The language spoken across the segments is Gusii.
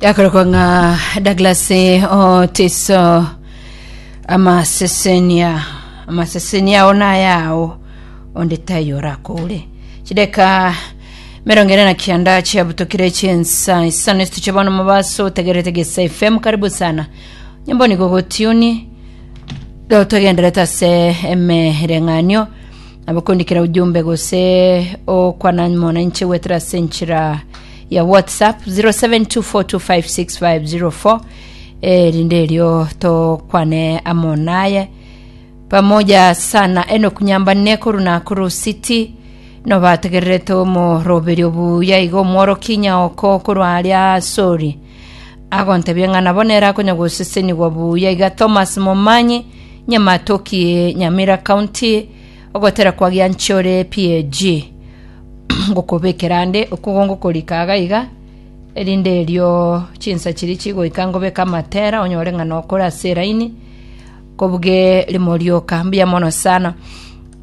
yakorokwa ng'a douglas otiso amasesenia amasesenia ao nayao onde tai orakore chideka merongo ere na kianda chiabutokire chinsa isano esituche bono mobaso otegerete gesa fm karibu sana nyombo nigo gotiuni togenderete ase emereng'anio Nabo kondikera ujumbe gose okwana mona inche gwetera ase enchera ya whatsapp 0724256504 erinde erio tokwane amo naye pamoja sana enoku nyambane koru na koru city nobategererete omoroberio buya iga omworoki nyaoko korwa aria sori agontebia ng'a nabo nere akonyagosesenigwa buya. Iga Thomas Momanyi, Nyamatoki, Nyamira County, ogotera kwa Gianchore PAG. ngokobekera ande okugo ngokorika aga iga erinde erio chinsa chiria chigoika ngobeka amatera onyore ng'a nokora ase eraini kobuge rimo rioka mbuya mono sana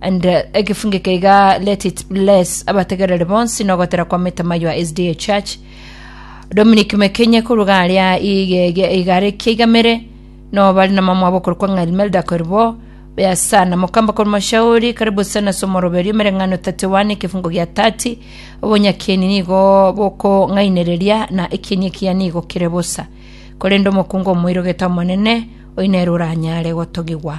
And egefunge keiga let it bless abategereri bonsi na ogotera kwa Mitama your SDA Church. Dominic Mekenye korwa garia igege igare kiaigamere no bari na mamwa bokoro kwa ng'ali Melda Korbo ya sana mukamba korwa mashauri karibu sana somoroberio mereng'ano 31 ekifungo gia 30 obonyakieni nigo boko ng'ainereria na ekieni ekiya nigo kire bosa korende omokungu omoirogete omonene oinere oranyare gotogigwa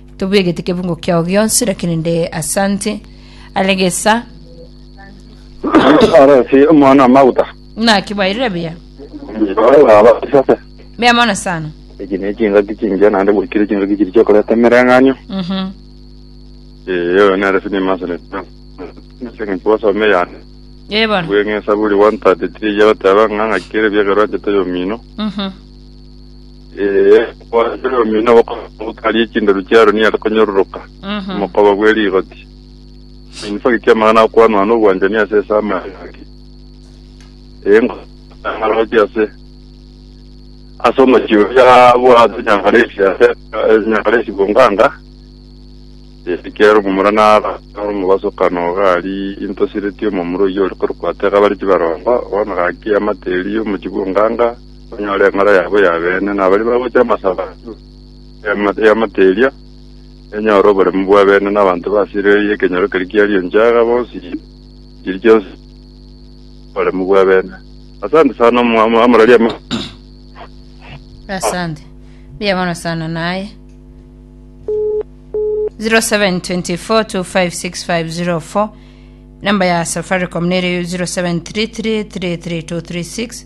Tobwegete kebungo kiao gionsi, lakini nde asante are gesa. Aresi omwana amaguta. Naki bairire buya. Baba sase. Mea mono sana. Eki ne chingaki chingiya naende gwikire chingaki chiri chiokoreta emereng'anio. Mhm. Eyo nere sini masere. Nsingi twasome yani. Ye bono. Bweng'esa buri 133 yagoteba ng'a ng'akire byegerwa chete yomino. Mhm. Ee, omwando oria omino obokongu bokaria echinderu chia Aroni are konyororoka Mhm. omokoba bwe rigoti. Eminsa gete amang'ana akwanwa nobwanchani ase ase amache ake. Ee, ngoroche ase ase omochie oria bwate Nyangalesi ase eh, Nyangalesi Bonganga. Ee, kiaro omomura nara nara omobasokano iga aria into sireti omomura oyio ore korokwa Tega bare chibarongo, bono gaki amate erio omochie Bonganga. Banyore eng'ora yabo y'abeene, na baria bagocha amasabo ase y'amate eria, enyore oboremu bw'abeene, na abanto ba Silo eye ekenyoro keria kiarie enchara bonsi chiri chionsi oboremu bw'abeene. Asante sana omwami amorori ama Asante. Mbuya mono sana naye. 0724256504 namba ya Safaricom nere 0733332336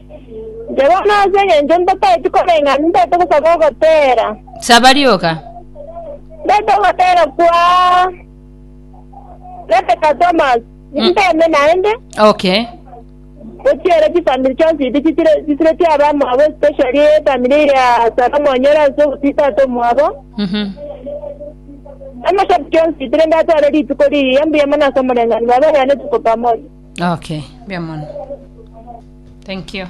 Nchegena ase engencho ntotaeti koreng'ana, ntaete gosaba ogoteera. Saba rioka. Ntaete ogoteera kwaa Rebecca Thomas, ninteeme naende Okay. gochia ere chifamiri chionsi iti chitire chisiretie abamwabo especially efamiri ya Sarah Mwanyoro ase ogotii tata omwabo. Mhm. Amashabiki onsi itire ndatware rituko riria mbuya mono ase omoreng'anio baba yane tuko pamoja. Okay, mbuya mono. Thank you.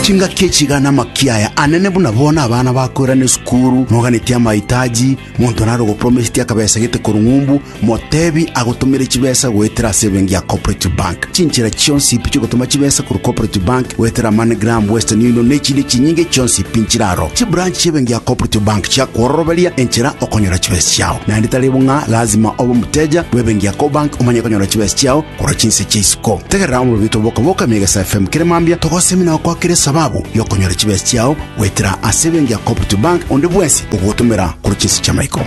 chingaki echigana makiaya anene buna bona abana bakorana esukuru moganetie amahitaji monto naro gopromesiti akabesa gete korung'umbu motebi agotomere chibesa goetera ase ebengi ya cooperative bank Chinchera chionsi pi chiogotoma chibesa korwa Cooperative Bank goetera MoneyGram, Western Union na echinde chinyinge chionsi pi nchiraro. Chibranch chi'ebenki ya Cooperative Bank chiakworoberia enchera okonyora chibesa chiao. Naende tari bo ng'a lazima obe omoteja bw'ebenki ya Cobank omanye konyora chibesa chiao korwa chinse chia isiko. Tegerera omorobi oito boka boka Megesa FM kere mambia togosemi na gokwakera esababu y'okonyora chibesa chiao goetera ase ebenki ya Cooperative Bank onde bwensi ogogotomera korwa chinse chi'amaiko.